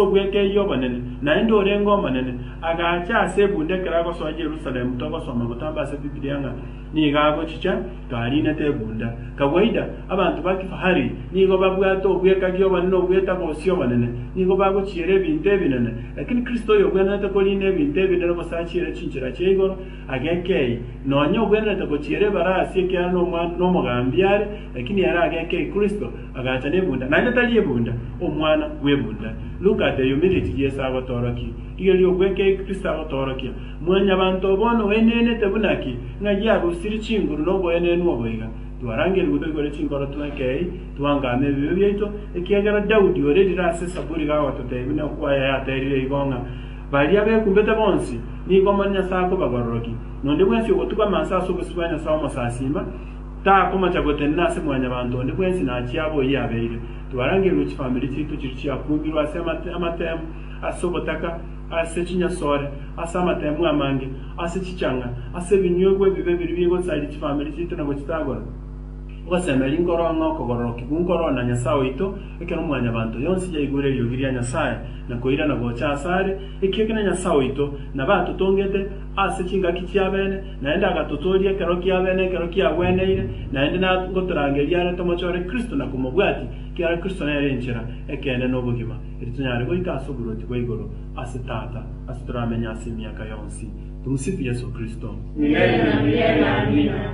obw'ekeyia obonene, naende orenge omonene, agaacha ase ebunda ekero agosoa Yerusalemu, togosoma gotamba ase Bibilia ng'a nigo agochicha, kariinete ebunda. Kawaida, abanto ba kifahari nigo babwate obw'ekagi obonene obw'etagosia obonene, nigo bagochiera ebinto ebinene. Lakini Kristo oyogwenerete koriina ebinto ebinene gose achiere chinchera chia igoro, Agekei, nonya ogwenerete gochiera ebarasi ekiagera nomwa- nomogambi are, lakini ere agekei Kristo, agacha nebunda, naende tari ebunda, omwana bw'ebunda. Luka ateyumirie echi Yeso agotorokia. Rigeria obwekei Kristo agotorokia. Mwanyabanto bono oenenete buna ki, ng'a yarusirie chinguru noboenenu obo iga? Twarangeria goika igoro chinkoro twekei, twangame ebibe biaito, ekiagera Daudi ore rire ase Esaburi gagototebia, na okwaya yaterire igo ng'a, Baria bekumbete bonsi nigo omoni Nyasae akoba bororoki, nonde bwensi ogotugama anse ase obosio bwa Nyasae Omosasiima, takomocha gotenena ase mwanyabanto onde bwensi nachia abo oyio abeire. Twarangeirwe chifamiri chiaito chiria chiakumbirwe ase amatemu, ase obotaka, ase chinyasore, ase amatemu amange, ase chichang'a, ase ebinyuegwa ebibe biria bigosaria chifamiri chiaito na gochitagora. Ngosemeri nkorong'e okogororoki, bu nkoroo na Nyasae oito, Ekero Mwanyabaanto yonsi yaigwire eriogi ria Nyasae na koirana gocha ase are, ekiagera ekero Nyasae oito nabe atotongete ase chingaki chiabene, naende agatotooria ekero kiabene ekero kiagweneire, naende na ngotorangeria are tomochore Kristo na komobwatia, ekiagera Kristo nere enchera ekeene na obogima, eri tonyare goika ase oboruoti bwa igoro ase Tata, ase toramenye ase emiaka yonsi. Tumsifu Yesu Kristo. Milele na milele. Amina.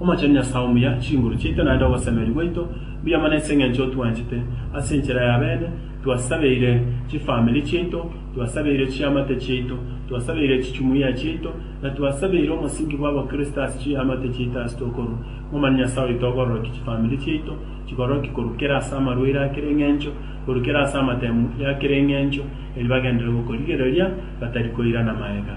Omochenu Nyasae omuya, chinguru chiaito naende ogosemeria gwaito mbuya mono ase engencho otwanchete. Ase enchera ya bene twasabeire chifamiri chiaito, twasabeire chiamate chiaito, twasabeire chichumuia chiaito, na twasabeire omosingi bw'abakristo ase chiamate chiaito ase tokorwa. Momani Nyasae oito okororokia chifamiri chiaito chikororokia korwa kera ase amarwaire a kera engencho, korwa kera ase amatemu ya kera engencho, erio bagenderere gokorigereria batari koirana magega.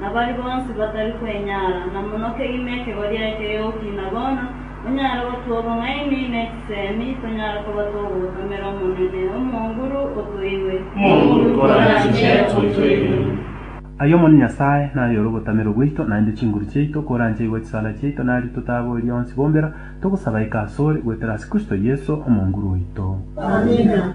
na baria bonsi batari kwenyara, na mono kegima ekegwa giaye kegegokina bono, onyare gotugwa obong'aini ne chisemi, tonyare koba togotomera Omonene, Omonguru, otoigwe. Omonguru, koranche otoigwe. Aye Omonene Nyasae, naye ore ogotamerwa gwaito, naende chinguru chiaito, koranche aigwa chisara chiaito, na aria totaboirie onsi bombera, togosaba aike asore, goetera ase Kristo Yeso, Omonguru oito. Amina.